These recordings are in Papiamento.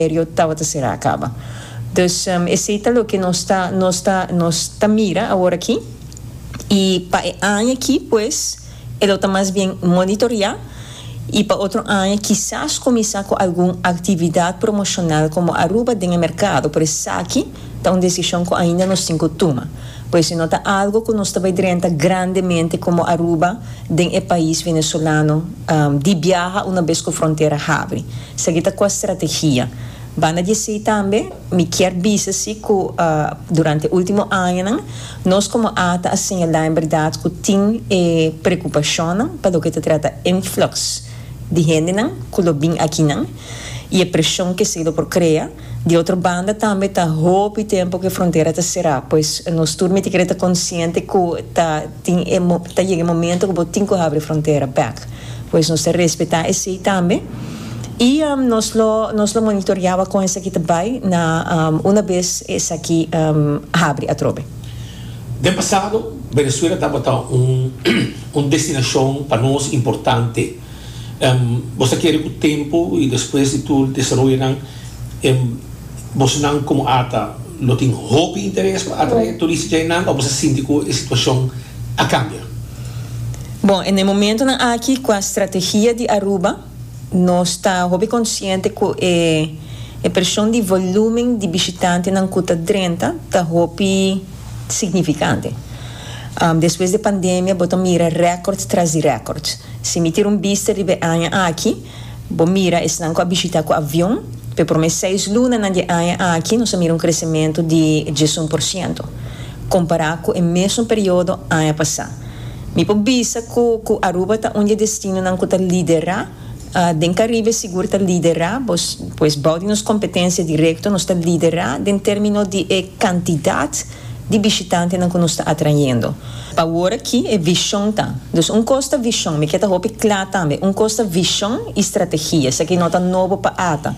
Period tabata será a caba. Dus esey ta loke nos ta nos ta nos ta mira awor aki. Y pa e aña aki pues e lo ta mas bien monitorea y pa otro aña kisas cuminsa cu algun actividad promocional como Aruba den e mercado pero esaki ta un decision cu ainda nos tin cu tuma pues e no ta algo cu nos ta bay drenta grandemente como Aruba den e pais venezolano di biaha una bes cu frontera habri. Segui ta cu e strategia. Banda di esey tambe mi kier bisa si cu durante e ultimo añanan nos como ata a señala en berdad cu tin e preocupacionnan pa loke ta trata influx di hendenan cu lo bin akinan y e presion cu esey lo por crea. Di otro banda tambe ta hopi tempo ku e frontera ta será, pues nos tur mi ta kere ta konsiente ku ta tin e ta yega e momento ku bo tin ku habri e frontera bèk, pues nos ta respetá esei tambe i nos lo nos lo monitoriaba kon esaki ta bai na una bes esaki habri atrobe. Den pasado, Venezuela tabata un un destinashon pa nos importante. Boso ta kere ku tempu i despues di tur desaroyonan e bosonan komo ata lo tin hopi interes pa atrae turista djainan o boso ta sinti ku e situashon a kambia? Bon, na e momentunan aki ku a strategia di Aruba nos ta hopi konsiente ku e e preshon di volúmen di bishitantenan ku ta drenta ta hopi signifikante. Despues di e pandemia bo ta mira rèkòrds tras di rèkòrds. Si mi tira un bista riba e aña aki, bo mira esnan ku a bishitá ku avion. Pa e promé seis lunanan di e aña aki nos a mira un kresementu di diesun por siento, kompará ku e mesun periodo aña pasá. Mi por bisa ku ku Aruba ta un di e destinonan ku ta liderá den Karibe, sigur ta liderá, pues bou di nos kompetensia direkto nos ta liderá den término di e kantidat, di bishitantenan ku nos ta atrayendo. Pa wor aki e vishon ta. Dus un kos ta vishon, mi ke ta hopi kla tambe, un kos ta vishon i strategia, esaki no ta nobo pa ata.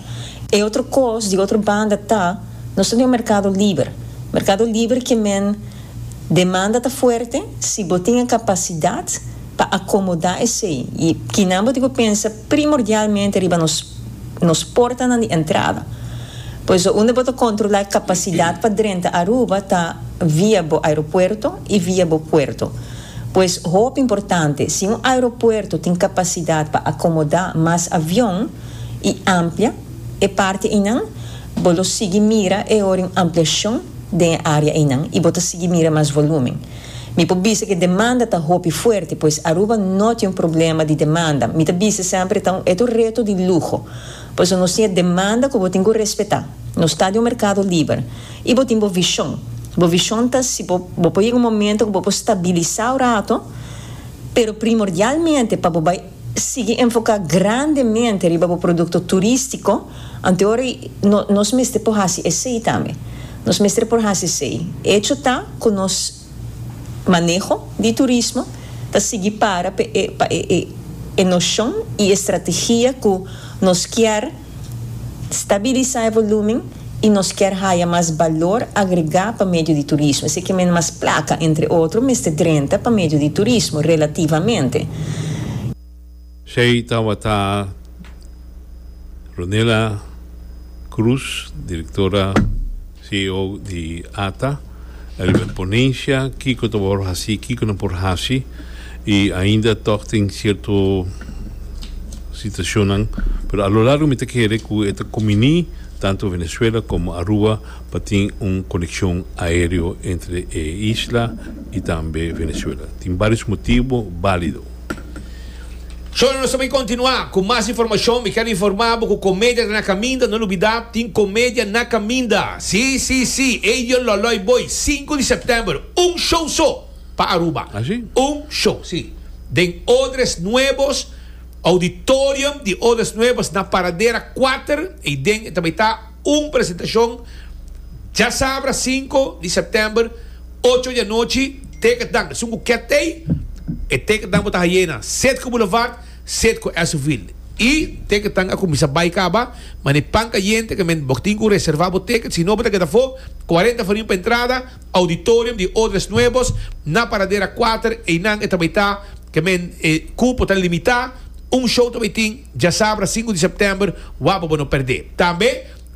E otro kos, di otro banda, ta nos ta den un merkado liber. Merkado liber ke men, demanda ta fuerte, si bo tin e kapasidat, pa akomodá esei i kinan bo tin ku pensa primordialmente riba nos nos portanan di entrada. Por eso unda bo ta kontrolá e kapasidat pa drenta Aruba ta via bo aeropuerto i via bo puerto. Pues hopi importante, si un aeropuerto tin kapasidat pa akomodá mas avion i amplia e parti einan, bo lo sigui mira e ora un ampliashon den e área einan i bo ta sigui mira mas volúmen. Mi por bisa cu e demanda ta hopi fuerte, pues Aruba no tin un problema di demanda. Mi ta bisa semper e ta un eto reto di luho. Por eso nos tin e demanda cu bo tin cu respeta. Nos ta di un mercado liber. Y bo tin bo vision. Bo vision ta si bo bo por yega un momento cu bo por stabilisa un rato, pero primordialmente pa bo bay. sigui enfoká grandemente riba bo produkto turístiko, ante ora nos mester por hasi esei tambe. Nos mester por hasi esei. Echo ta ku nos maneho di turismo ta sigui para pa e noshon i e strategia ku nos kier. Stabilisa e volumen y nos kier haya mas balor agrega pa medio di turismo. Esei ke mende mas placa, entre otro, mester drenta pa medio di turismo, relativamente. Esei tawata Ronela Cruz, directora. CEO di ata, Elbert Ponencia, kiko ta por hasi, kiko no por hasi, y ainda tog tin cierto situacionnan, pero a lo largo mi ta kere cu e ta cuminí tanto Venezuela como Aruba pa tin un conexion aereo entre e isla y tambe Venezuela. Tin barios motibo balido. Shona nos ta bin kontinuá ku mas informashon. Mi ker informá bo ku Komedia ta na kaminda. No lubidá, tin Komedia na kaminda. Sí, sí, sí, ey yo lòlòi bo ey, sinku di sèptèmber, un show so pa Aruba. Así? Un show, sí. Den Odres Nuevos, Auditorium di Odres Nuevos, na Paradera kuater. Ey den ta bai ta. Un presentacion djasabra sinku di september ocho di anochi tekentnan esun ku ketey e tekentnan bo ta hayena set ku boulevard set ku esuvilde y tekentnan a kuminsa bay kaba mane pan kayente ke men bo tin ku reserva bo teket sino bo ta keda afo cuarenta farin pa entrada auditorium di odres nuevos na paradera kuater eynan e ta bay ta ke men e kupo ta limita un show ta bay tin djasabra sinku di september wak bo bo no perde tambe.